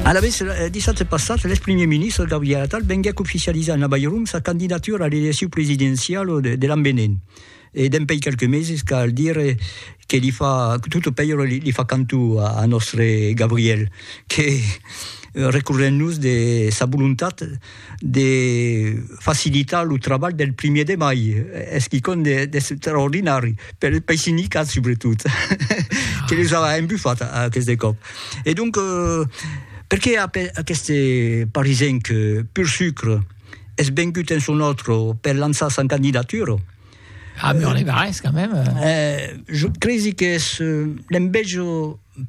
Alavetz, dissabte passat, lèx primièr ministre Gabriel Attal venguèc oficializar en Avairon sa candidatura a l'elecciu presidenciau de l'an venent. E dempèi quelques meses cal dire que li fa, tot o pèira li fa cantu a nòstre Gabriel, que recorrent-nos de sa volontat, de facilitar lo trabalh del primièr de mai, es quicòm d'extraordinari, pei sindicats subretot, que les a embufat aqueste còp. E donc, perqué aqueste parisenc pur sucre es vengut en son òtro per lançar sa candidatura? A Mur-les-Barrés, quand même! Jo cresi qu'es l'enveja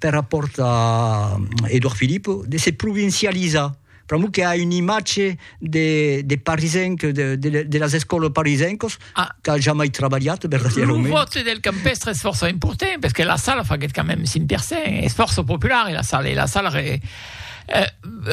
per rapòrt a Edouard Philippe de se provincializar, Pr'amor que a un imatge de, de parisenc, de, de, de las escòlas parisencos, ah. qu'a jamai trabalhat, verdaderament. Lo vote del campestre és força important, perquè la sala faguet quand même 5%, és força popular, la sala, la sala... Re eh,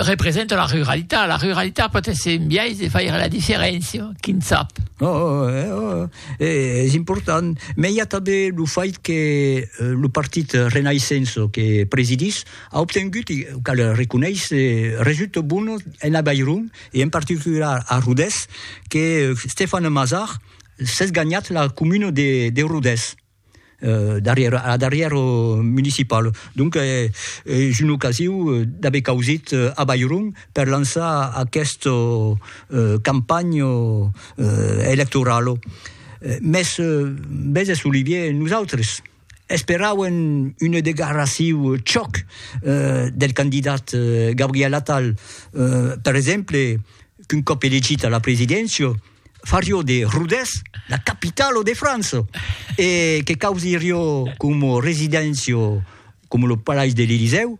representa la ruralitat. La ruralitat pot ser un biais de faire la diferència, qui ne sap. Oh, oh, eh, oh, eh, és important. Mais hi ha també el fait que eh, le partit Renaissance que presidís A obtengut, e cal reconéisser, resultats bones en Avairon e en particular a Rodés, que Stéphane Mazard s'es ganhat la comuna de Rodés darrièr a la darrièra municipala. Donc es una ocasiu d'aver causit Avairon per lançar aquesta campanha electorala. Mès, veses Olivier, nosautres, Esperauen una degarraciu chòc del candidat Gabriel Attal, per exemple, qu'un còp elegit a la presidéncia, farió de Rodés la capitala de França e que causirió coma residéncia coma lo Palais de l'Elysèu,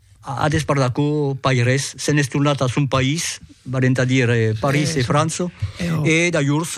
A despart d'aquò, pas res. Se'n es tornat a son país, valent a dire París e França, e d'ajors,